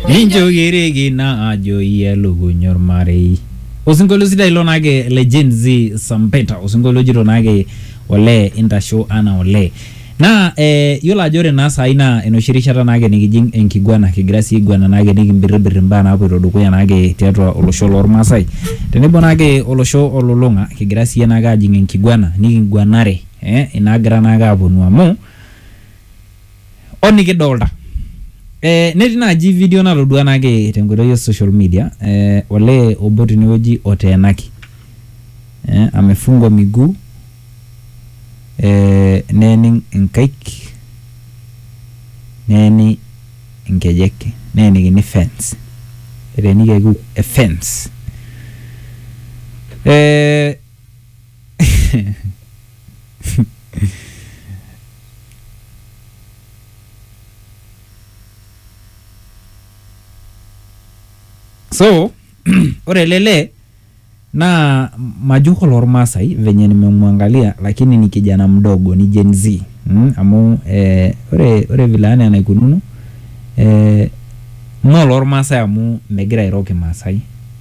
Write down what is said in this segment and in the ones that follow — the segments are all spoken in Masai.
Ninjokereki naa ajo iyie elukuny ormarei. Osinkolio sidai ilo naake le Gen Z Sampeta, osinkolio ojito naake olee intasho anaa olee. Naa eh, yiolo ajo ore naa saai naa enoshi rishata naake nikijing enkiguana kigira sii aiguana naake nikimbirribirr imbaa naapuoito dukuya naake tiatua olosho lormaasai tenebo naake olosho olulung'a kigira siyie naake ajing enkiguana nikiguanare eh, inaagira naake aponu amu o nikidolta eh, netii naaji video natodua nake tenkoitoi e social media eh, olee obo tinewueji oteenaki eh, amefungwa miguu eh, neening inkaik neeni inkejek neenikini fence eteenikiaki e fence eh, so ore ele lee naa majo kulo ormaasai venye nimemwangalia lakini ni kijana mdogo ni Gen Z mm? amu eh, ore ore vile ana enaikununo eh, moo lormaasai amu megira airo kimaasai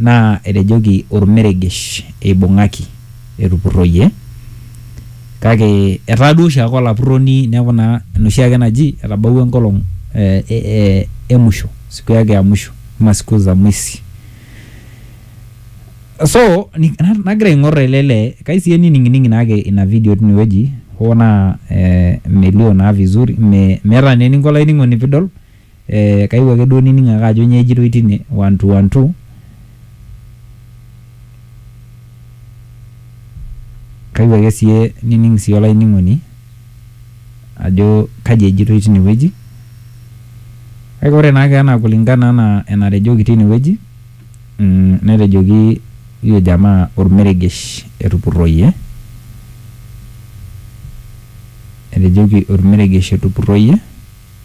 Naa etejoki olmeregesh eibung'aki etupurroyie. Kake etaa duo oshiake olapurroni neaku naa enoshiake naji etabawua enkolong emusho, siku yake ya mwisho ama siku za mwisi. So nagira aing'orr ele lee kai sii enining'ining'i naake ina vidio tinewueji hoo naa melio naa vizuri meeta naa eninko olainining'oni piidol. Eeh kayieu ake duo nining ake ajo nyoo ejitoi tine one two one two kayieu ake siye nining siye olainining'oni ajo kaji ejitoi tine wueji kake ore naake anaa kulingana anaa enatejoki tine wueji mmh netejoki huyo jamaa olmeregesh etupurroyie etejoki olmeregesh etupurroyie.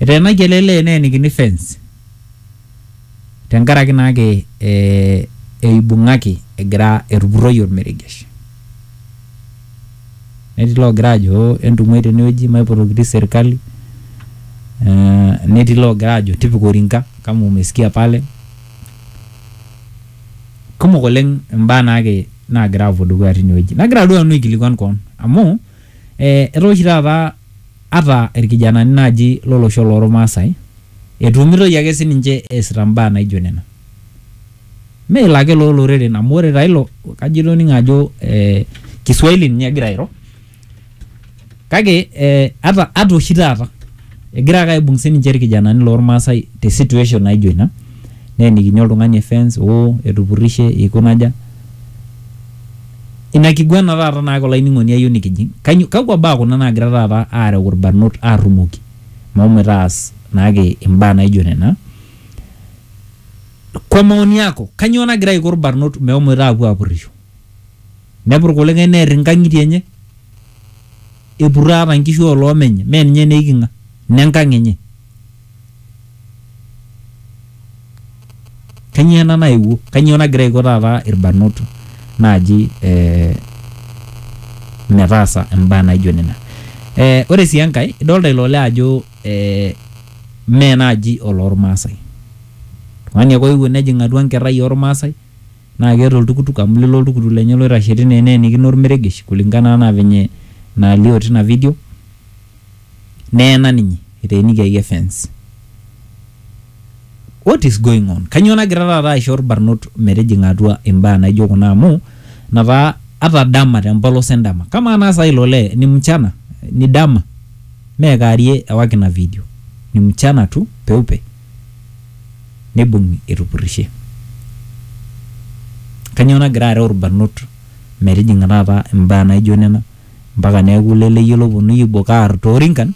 Eteenayie ele lee neenikini fence tenkaraki naake eh, eibung'aki egira etupurroyie olmeregesh. Netii loogira ajo "Oh, entung'uai tenewueji maipotoki serkali eh, netii loogira ajo tipika orinka kama umesikia pale. Kumok oleng' imbaa naake naagira apuo dukuya tinewueji. Nagira duo nanu aikilikuan koon amu eh, etaa oshi taata. Ata ilkijanani naaji lo losho loo Lmaasai etumitoi ake sii ninche eesita mbaa naijo nena. Mme ilo ake loo loreren amu ore taa ilo kajo itoning'o ajo Kiswahili ninye egira airo kake ata oshi taata egira ake aibung sii ninche ilkijanani loo Lmaasai te situation naijo ina neenikini oltung'ani e fence oo etupurrishe eikuna aja. Ina kiguana taata naake olainining'oni ayieu nikijing', kainyo kakua baa kuna naagira taata aareu ilbarnot aarrumoki meshomoita aas naake imbaa naijo nena. Kwa maoni yako, kanyoo nagira aiko ilbarnot meshomoita aapuo aapurrisho? Nepurr kulikae neer inkang'itie enye, epurroo ata nkishu oo loomenye mee ninye naa eiking'a, nenkang' enye. Kanyio ena naewuo? Kanyio nagira aiko taata irbanot naaji eh metaasa imbaa naijo nena? Eh ore sii enkae idolita ilo lee ajo eh mee naaji oloormaasai. Oltung'ani ake oewuo nejing atua nkerrai ormaasai Naa keeta oltukutuk amu lilo oltukutuk lenye loitashe tine neenikino olmeregesh kulingana anaa venye naalio tina video. Neena ninye eteenikiaki efens. What is going on? Kanyoo nagira taata aisho ilbarnot metijing'a atua imbaa naijo kuna amu ina taa ata dama tempolos endama. Kamaa naa saa hii ilo lee ni mchana ni dama mee kaarie ewaki ina video. Ni mchana tu peupe. neibung'i etupurrishe. Kanyoo nagira areu ilbarnot metijing'a taata imbaa naijo nena mpaka neaku leleyio lopuonuni aibok aar toorinkan,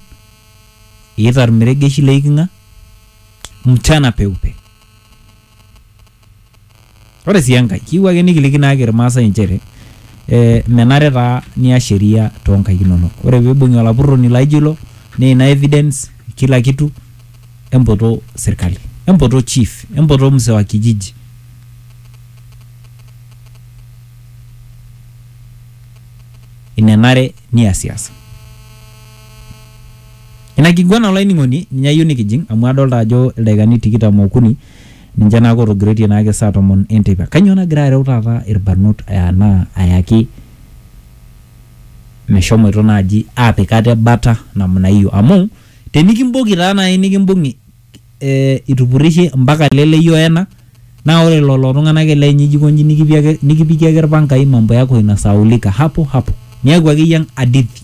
eita ilmeregeshi leeiking'a mchana peupe. Ore sii enkae, kiyieu ake nikiliki naake Ilmaasai inchere eh menare taa nias sheria too nkaik inono. Ore pee eibung'i olapurroni laijo ilo naa ina evidence kila kitu empoto serkali, empoto chief, empoto mzee wa kijiji. Ina enare niasiasa. Ina kiguana olainining'oni ninye ayieu nikijing amu adolita ajo ildaikani tikitam okuni Ninche naa kootogiroitie naa ake saa tomon e nteipa. Kainyoo nagira areu taata ilbarnot anaa ayaki meshomoito naaji aapik ate bata namna hiyo? Amu tenikimboki taa naai nikimbung'i itupurrishe mpaka ele leyie o ena naa ore lelo tung'ana ake leenyu ijo aikonji nikipikie ake ilpangai mambo yako inasahaulika hapo hapo. Niaku akeyie hadithi.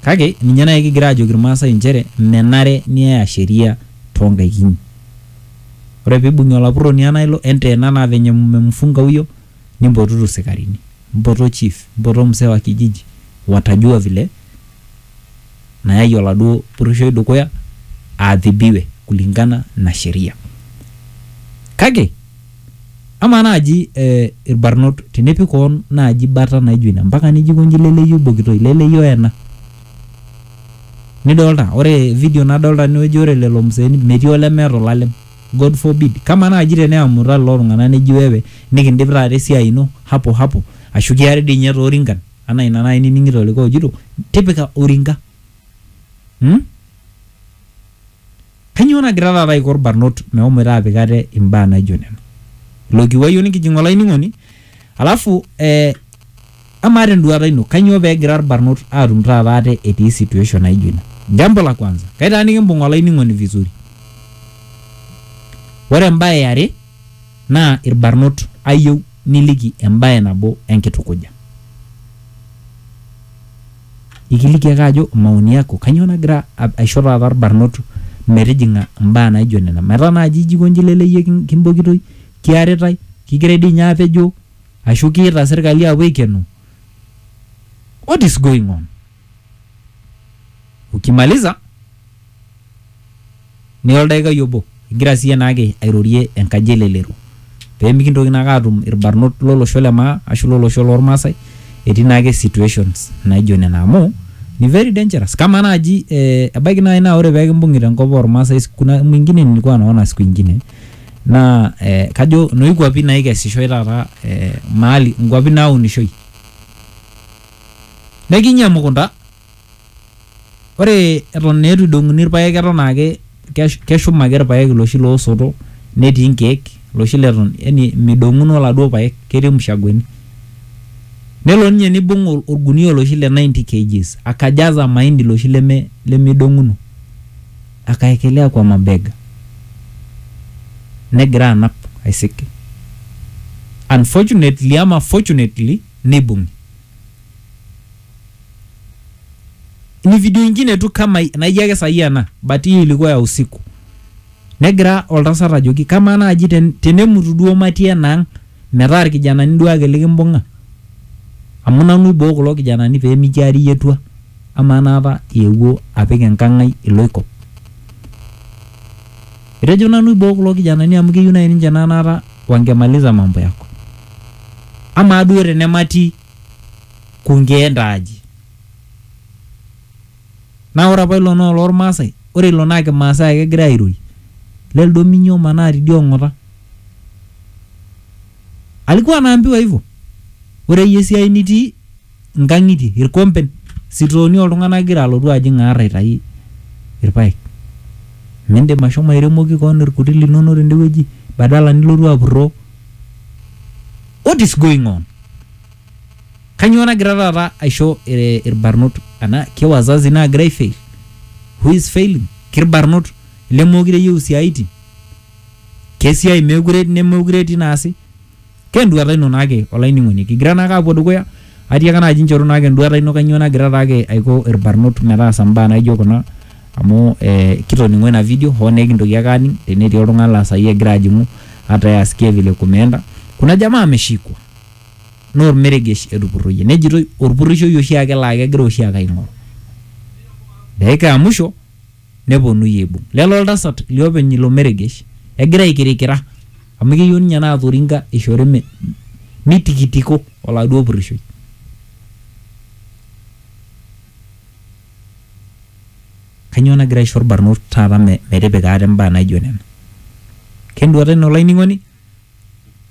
Kake ninye naaji kigira aajoki Ilmaasai inchere menare niaya sheria too nkaik inyi. Ore pee eibung'i olapurroni anaa ilo enteena anaa venye mmemfungauyo nimpotutu sikarini. Mpoto chief, mpoto msee wa kijiji watajua vile nayayie oladuo purrushoi dukuya aadhibiwe kulingana na sheria. Kake amaa naaji ilbarnot tenepik koon naaji bata naijo ina mpaka nijo aikonji leleyio oibokitoi, leleyio oena. Nidolita ore video nadolita tenewueji ore lelo museeni metii olemeeta olalem. God forbid. Kamaa naaji teneamuta lelo tung'anak neji wewe nikindip taata esiai ino hapo hapo ashu kiari dii ninye toorinkan. Anaa ina naaji nining'ito likae ojito tipika oringa. Umm? Kanyoo nagira taata aiko ilbarnot mehomoita aapik ate imbaa naijo nena? Ilo kiwuai o nikijing olainining'oni alafu eh amaa te nduaata ino kanyoo pee egira ilbarnot aatum taata ate etii situation naijo ina? Jambo la kwanza, kaitaa nikimbung olainining'oni vizuri. Ore embae e are naa ilbarnot ayieu Niliki embae nabo enkitukuja. Ikiliki ake ajo maoni yako kanyoo nagira aisho taata irbarnot metijing'a imbaa naijo nena. Metaa naaji ijo aiko inji leleyie kimbokitoi, kiaritai, kigirai dii ninye aapejoo ashu kiita serikali aapuo aikeno. What is going on? ukimaliza niya oldaikai obo igira siiyie naake airorie enkaji elelero pemikintoki naake atum irbarnot lolosho le maa ashu lolosho lormaasai etii naake situations naijo nena amu ni very dangerous kama naaji eh, ebaiki naaji naa ore pekimbung'i tenkop ormaasai kuna mwingine nilikuwa naona siku ingine naa eh, kajo noikuapi naikesishoe taata eh, mahali nkuapi naunishoi Nekinyi emukunta, ore eton naa eitu eidong'uni irpaek eton ake keshum ake irpaek iloshi loosoto netii inkeek iloshi leton yani midong'uno iladuo paek ketii imushakwani. Nelo ninye neibung' olgunia oloshi le 90 kgs akajaza mahindi loshi leme lemeidong'uno akaekelea kwa mabega negira anap aisik. Unfortunately ama fortunately neibung. Ni video ingine tu kama naijo ake sahi ena but hii ilikuwa ya usiku. Negira oltasat ajoki kamaa naaji ten, tenemutu duo matii enaang metaa irkijanani duo ake likimbung'a amu nanu iboo kulo kijanani pee mikiari iyie tua amaa naapa iewuo apik enkang ai iloikop. Etejo nanu iboo kulo kijanani amu keyieu naaji ninche naa naata wangemaliza mambo yako. Amaa duo tenemati kunkee ntaa aji? Naa ore apa ilo naa oloolmaasai, ore ilo naa kimaasai ake egirai airorie. Le ldominyo omanaa tidie ong'ota. Alikuwa anaambiwa hivo, ore iyie esiai nitii. inkang'itie, irkompen, sitooni oltung'anak igira alotu ajing aar aitai irpaek. Mindim ashomo airemoki koon irkuti linono tende wueji badala nilotu apurroo. What is going on? Kanyoo nagira taata aisho irbarnot ana ke wazazi naagira aifail? Who is failing? Kirbarnot lemeekure eyieu isiaitin? Kesiai meekure nemeekure etii naasi? Ke enduata ino naake olainining'oni. Kigira naake apuo dukuya, atiaka naaji nchoru naake enduata ino kanyoo nagira taake aiko irbarnot metaasa mbaa naijo kuna amu eh, kitoning'o ina video hoo naa ekintoki ake aning tenetii oltung'ani laa saai egira ajing'u hata yeye asikie vile kumeenda. Kuna jamaa ameshikwa naa ormeregesh etupurroyie nejitoi orpurrishoi oshiake laa kegira oshiake aing'oru. Dakika ya mwisho. neponui aibung lelo oltasat liopeny ilo meregesh egira aikirikira amu keyieu ninye naa Thoringa ishori me, mitikitiko oladuo purrishoi. Kanyoo nagira aisho irbarnot taata me, metipika ate imbaa naijo nena? Kenduata ino olainining'oni?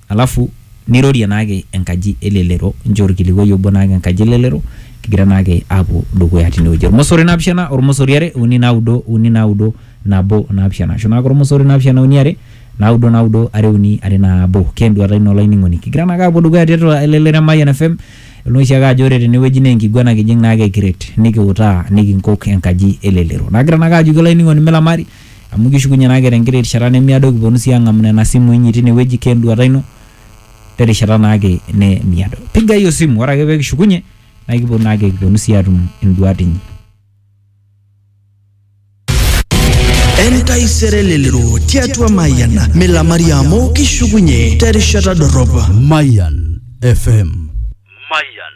alafu neirorie naake enkaji e lelero nchoo olkilikuai obo naake enkaji e lelero kigira naake aapuo dukuya tinewueji. Olmosori naapishana, olmosori are, uni naudo, uni naudo, nabo naapishana ashu naake olmosori naapishana uni are, naudo naudo, are uni, are nabo. Keenduata ino olainining'oni kigira naake aapuo dukuya tiatua elelero e Mayian FM idol naa oshiake ajo ore tenewueji neenkiguana kijing' naake kiret nikiutaa nikinkok enkaji e lelero. Nagira naake ajoki olainining'oni milamari. Amu kishukunye naa kira enkiti rishata nemiado kiponu sii ang'amu nena simui inyi tine wueji ke enduata ino te rishata naake nemiado. Pigai osimu ore ake pee kishukunye naa kiponu naake kiponu sii atum induat inyi. Entaisere elelero tiatua Mayian milamari amu kishukunye terishata dorrop. Mayan FM. Mayan.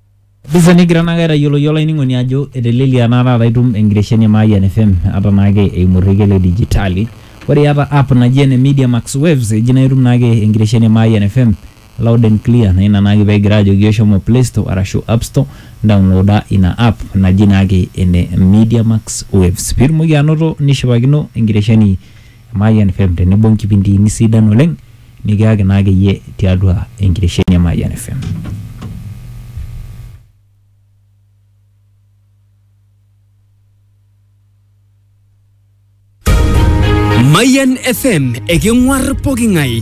Bisa nigira naake aitayioloki olainining'oni ajo etelelia naa taata itum enkitesheni e Mayian FM ata naake eimu orrekie le dijitali. Ore iyata app naji ene Media Max Waves eji naa itum naake enkitesheni e Mayian FM loud and clear naa ina naake pekigira ajoki iyiok shomo play store arashu app store indaonloda ina app naji naake ene Media Max Waves piitumoki anoto nishipakino enkitesheni Mayian FM tenebo nkipindiini sidan oleng nikiyaki naa akeyie tiatua enkitesheni e Mayian FM. Mayian FM eking'uar poking'ae.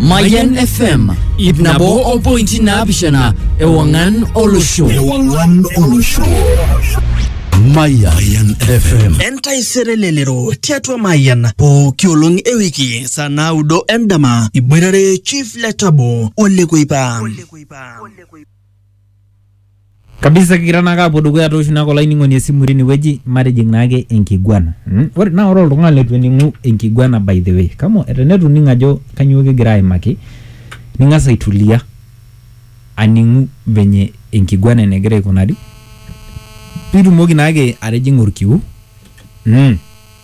Mayan FM ip nabo o pointi naapishana ewang'an olosho. Ewang'an olosho. Mayan FM. Entaisere lelero tiatua Mayan pooki olong e wiki saa naudo endama iboitare Chief Letabo Ole Kuipa. kabisa kigira naake apuo dukuya tooshu naake olainining'oni esimu tinewueji matijing naake enkiguana mm? ore naa ore oltung'ani leitu ening'u enkiguana by the way kama tenetu ining ajo kanyoo kigira aimaki ning'as aitulia aning'u venye enkiguana enegira aikunari pitumoki naake atijing'a orkiu mm.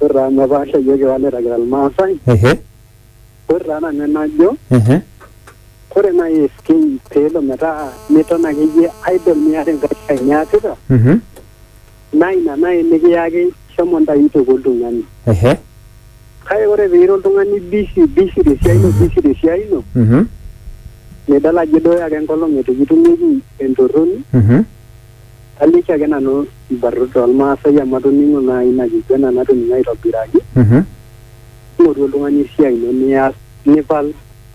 Ore taa amu epaasha iyiok iwaleta kira Irmaasai, ehe, ore taa nanu enajo, ehe, ore naaji SK peelo metaa miton akeyie idle miata enkae siai niasita, mhm, naa ina naaji nikiyaki shomo ntayu toki oltung'ani. ehe, Kake ore piira oltung'ani busy busy tesiai ino busy tesiai ino, mhm, nidol ajo iduuya ake enkolong eitu kitumieki entorroni, mhm, Kaliki ake nanu ilbarnot loolmaasai amu atoning'o naa ina kiguena natoning'o aitobiraki. Mhm. Ing'oru oltung'ani esiai ino nias nipal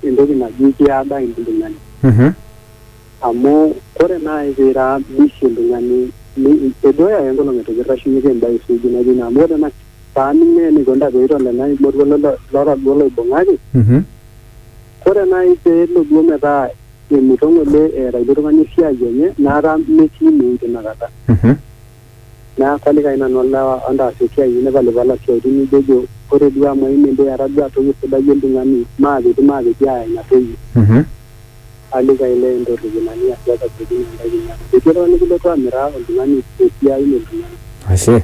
entoki naji kiada oltung'ani. Mhm. Amu ore naai piira busy oltung'ani edooyo ake enkolong' eitu kirrashunyeki embae suuji naijo ina amu ore paaning' naa eneikoni taata peitolena emoruo lotagolo oibung'aki. Mhm. Ore naaji pee elo duo metaa emuto ng'ole eeta ilo tung'ani esiai enye naata metii ine wueji tina kata. Mhm. Neaku alikai nanu olewa entaas esiai inyi nipalipala isiaitin nijojo ore duo amu aimie doi etaa duo atoiuo sidai o ltung'ani maapeti maapeti aaya ina toki. Mhm. Alikai lee entorrip ina nias iyas asioki naa intae kinyi amu metii oltung'ani likilotu amiraa oltung'ani esiai e ltung'ani. Ashe.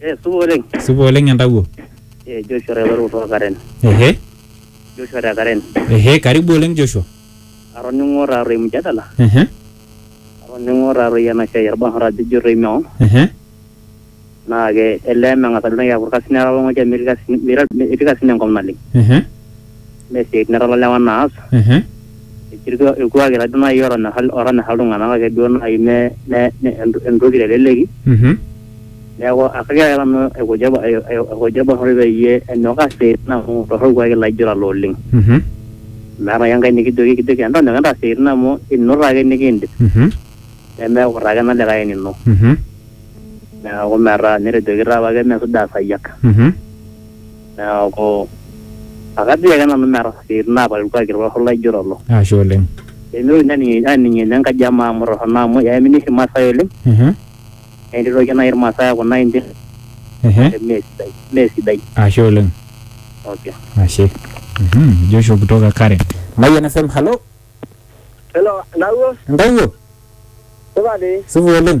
Eh, supa oleng. Supa oleng entawuo. Eh, Joshua Railor kutoka Karen. Ehe, Joshua te Karen. ehe, karibu oleng Joshua. Atoning'o taaroi mjadala. Ehe, Atoning'o taaroi ena siai orbanhara ajo toi meon. ehe, Naa ke elee meng'asa duo naaji aaku irkasin etaa olong'oja metii irkasin metii irkasin enkop naleng. ehe. mee siatin etala lewa naas Ehe. etii irku- irkuaki taduo naaji otonyorra otonyorra iltung'anak kake duo naaji me me me ent- entoki teleleki Mhm. neeku akagira ake nanu aikuja ai- ai- aikuja olbarnoti peyie enyok aas isiatin amu torrok irkuaki laijo lelo oleng Mhm. meeta ake enkae nikijoki ekijoki entonyok entaas isiatin amu ino taake nikiindip Mhm. nemeeku taake enolikae enino Mhm. neeku metaa netejoki taa apake mesuja asayiak Mhm. neaku akatii ake nanu meeta siatin naapal ilkuaki torrok laijo lolo. Ashe oleng. Pemitoki aning aning ene nkaji e maa amu torrono amu eamini oshi Irmaasai oleng Mhm. naa etii toki nai Irmaasai aaku nai indim Ehe. mee sidai mee sidai. Ashe oleng. Okay. Ashe. Mhm. Joshua kutoka Karen. Mayian FM, halo. Hello, Ndawuo, Entawuo? supa dii. Supa oleng.